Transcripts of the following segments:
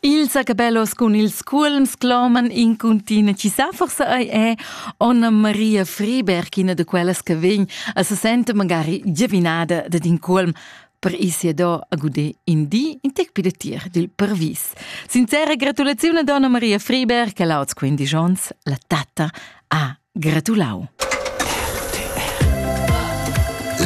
Ils acabellos cun ils cuolms cloman in cuntina chi sa forsa ei è Onna Maria Friberg ina de quellas che vegn a se sente magari giavinada da din cuolm per sia do a gude in di in tec pidatir dil pervis. Sincera gratulazione a Donna Maria Friberg che lauts quindi jons la tatta a Gratulau.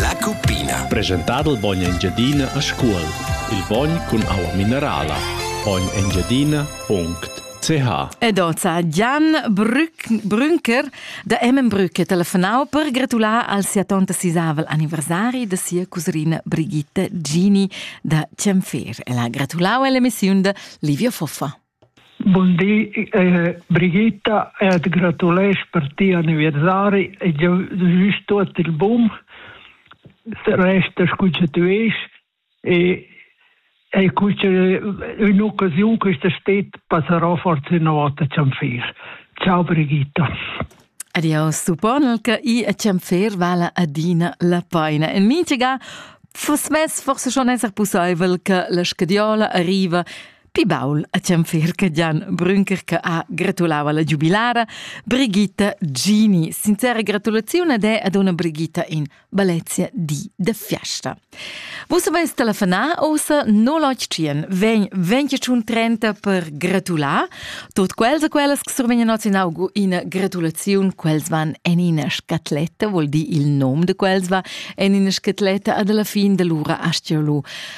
La cuppina. Presentà dal bogn Engiadina a Scuol. Il bogn cun aua minerala. bognengiadina.ch Ed oza Gian Brünker da Emmenbrück telefonau per gratular al sia tonta sisavel anniversari da sia cusrina Brigitta Gini da Cienfer e la gratulau all'emissiun da Livia Foffa. Bun di, eh, Brigitta, e ti gratulesch per ti anniversari e jeu wüsch tuot il bun. Resta scu che tu esch e e cuce un'occasione che sta stet passerò forse una volta Cianfir. Ciao Brigitta. Adios, supponel che i a Cianfir vala adina la paina. En minchega fuss mess forse schon esser pussaivel che la scadiola arriva Pi baul a Cianfirca Gian Brünker che ha gratulau alla giubilara Brigitta Gini. Sincera gratulazione ad è ad una Brigitta in Balezia di de Fiesta. Vus avais telefonà ossa 081 vegn 2130 per gratular tot quels e quellas che survegnan oz in augo ina gratulazione quels van en ina scatletta, vuol dir il nom de quels va en ina scatletta ad alla fin dell'ura astialo.